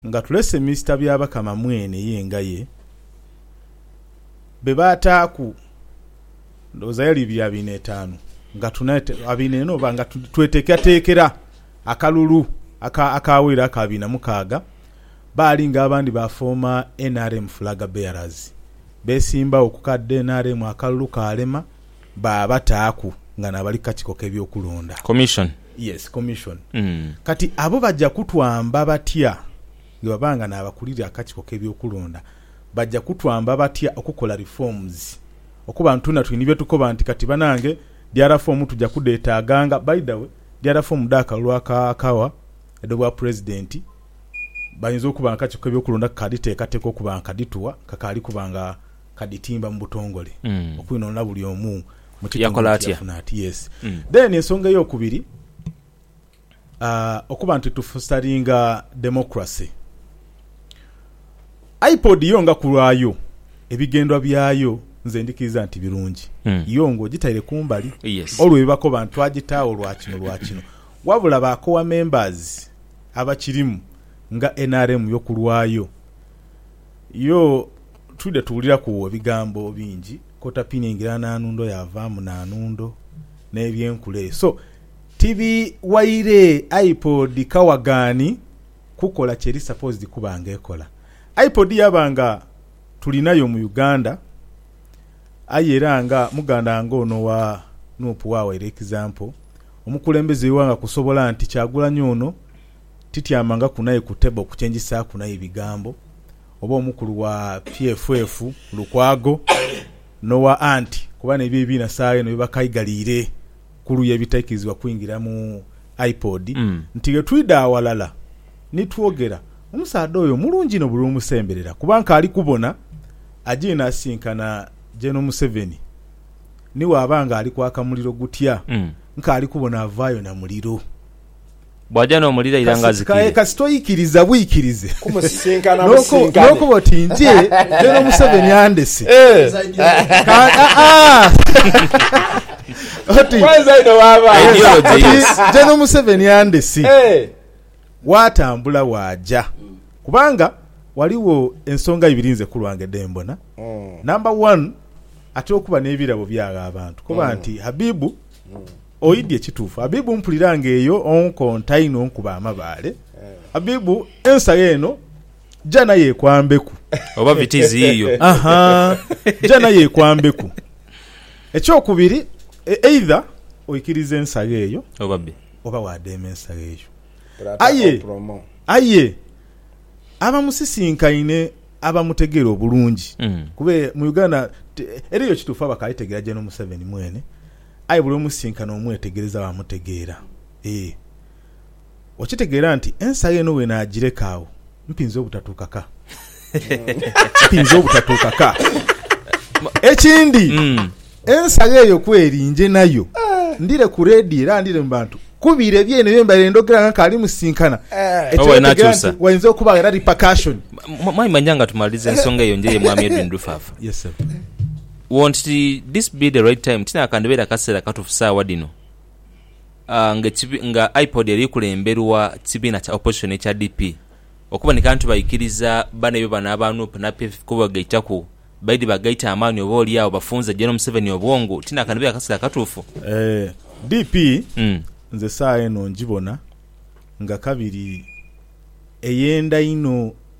Nga tulese Mister Byabakama mwene ye ngaye be baataaku ndowooza yali ibiri abiina etaanu nga tuna abiina ena oba nga tweteekateekera akalulu aka akaawaire aka abiina mukaaga baali nga abandi baafooma nrm Flag Bearers. Beesimbagho ku ka dnrm akalulu kaalema. baabataaku nga n'abali ku kakiiko k'eby'okulonda, Commission. yes, Commission. Mm. Kati abo baja kutwamba batya bwe baba nga n'abakulira akakiiko k'eby'okulonda? Baja kutwamba batya okukola reforms okuba nti twena tuli ni bye tukoba nti kati banange DR fomu tuja kudheetaaganga? By the way, DR fomu dh'akalulu aka Kawa edh'Obwapresident bayinza okuba nga akakiiko k'eby'okulonda kakaadhiteekateeka okuba nga kadhituwa, kakaali kuba nga Kadhitimba mu butongole okwinonla buli omu mu kitongole kye yafuna ati yes then ensonga eyokubiri okuba nti tufostaringa democracy IPOD yo nga kulwayo ebigendwa byayo nze ndikiriza nti birungi yo nga ogitaire kumbali olwo byebakoba nti twagitaawo lwa kino lwa kino wabula ba core members abakirimu nga nrm yo kulwayo Yo, twidha tuwuliraku ebigambo bingi kota pini engira na nundo yavamu na nundo ne byenkula eyo so tibiwaire ipod kawagani kukola kyeri supposed kuba nga ekola. Ipod yaba nga tulinayo mu Uganda aye era nga muganda wange ono owa Nup wawaire example omukulembeze we ighanga kusobola nti Kyagulanyi ono tityamangaku naye ku table kukye njisaaku naye bigambo, oba omukulu wa PFF Lukwago n'owa Anti kuba n'ebyo ebibiina saagha eno bye bakaigaliire ku luuyi ebitaikirizibwa kwingira mu IPOD nti ghe twidha aghalala ni twogera. Omusaadha oyo mulungi inho buli lw'omusemberera kuba nkaali kubona ajaire n'asisinkana Gen Museveni ni bw'aba ng'ali kwaka muliro gutya, nkaali kubona avaayo na muliro. Bw'aja n'omulira ira ng'azikire. Kasita oikiriza bwikirize n'okoba oti nti lero Museveni andese, oti Gen Museveni andese, waatambula waaja. Kubanga ghaligho ensonga ibiri nze ku lwange dhe mbona. Namba wanu atera okuba n'ebirabo by'agha abantu koba nti Habib. Oidhie kituufu Abibu mpulira nga eyo onkonta inho onkuba amabaale Abibu ensagho eno jana yekwambeku Oba vitizi yiyo. Ahaa jana yekwambeku Ekyokubiri either oikiriza ensagho eyo Oba bye. oba wadheema ensagho eyo Pulata Aye opromo. aye abamusisinkaine abamutegera obulungi Mm. kuba mu Uganda ti eriyo kituufu abakaitegera General Museveni mwene Aye buli omusinkana omwetegereza baamutegeera. Ee, okitegeera nti ensayo eno bwe naagireka agho, mpinza obutatuuka ka. Mpinza obutatuuka ka. Ekindi, ensayo eyo ku eri, nje nayo ndhire ku leediyo era ndhire mu bantu kubira eby'eno bye mbaire ndhogera nga nkaali musinkana. Ekyo Oba otegeera inaakyusa. nti wainza okuba era repercussion. Mwa- Mwami Manyanga, tumalize ensonga eyo nje ye Mwami Edwin Lufaafa. Yes, sebo. Won't this be the right time, tinakandhibeera kaseera katuufu saawa dhino nga IPOD eri kulemberwa kibiina kya opposition ekya DP okuboneka nti baikiriza banaibwe bano aba nup na PFF kubagaitaku baidhi bagaite amaani oba oli agho bafunze Gen Museveni obwongo, tinakandhibeera kaseera katuufu. DP nze saawa eno ngibona nga kabiri eyenda inho.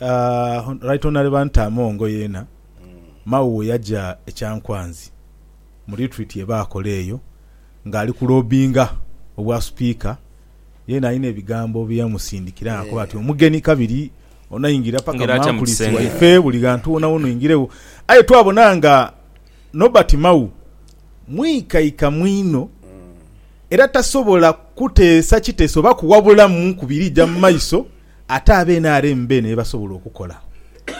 Aah Right Honourable Anita Among yeena Mao weyaja e Kyankwanzi mu retreat yebaakola eyo nga ali ku lobbinga obwa Sipiika yeena alina ebigambo byeyamusindikira nga akoba ati omugeni kabiri onaingira paka mu mankulisi waife buli ghantu wonawona oingiregho aye twabona nga Norbert Mao mwikaikamu inho. Era tasobola kuteesa kiteeso oba kuwabulamu ku birija mu maiso ate aba nrm beene bye basobola okukola.